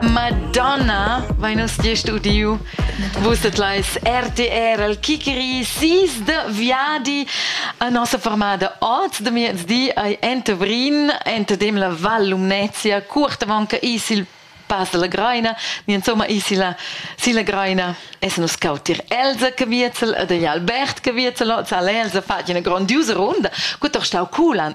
Madonna, vai nus gest udiu. Vus et leis RTR al Kikeri sis de viadi a nossa formada oz de miezdi ai ente Vrin, ente dem la Val Lumnezia, curt avant che is il Pass della Greina, ni insomma is la, si la Greina es nus cautir Elsa che viezel e degli Albert che viezel, zal Elsa fatg una grandiosa runda, gut doch stau culan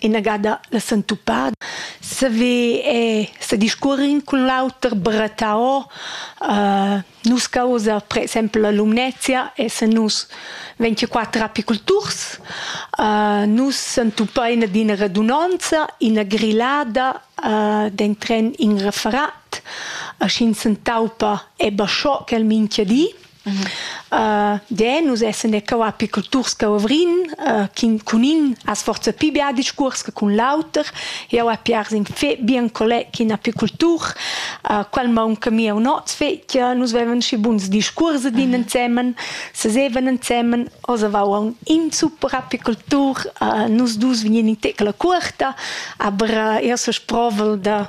inagada la sentupada saver e sediscuorin cun l'auter barattà o uh, nus causa per exempel la lumnezia e se nus 24 apiculturs uh, nus sentupa ina d'ina radunanza ina grillada uh, den tren in referat a schin sentaupa e basciò quel minchia di De nus essen e cau apiculturs che ovrin chin cun in as forza pi bia discuors che cun l'auter jau a piars in fe bien colleg in apicultur qual maunca mi un oz fetja nus vevan schi buns discuors din ensemen se seven ensemen os avau un in super apicultur nus dus vegnin in tecla cuorta aber io so sprovel da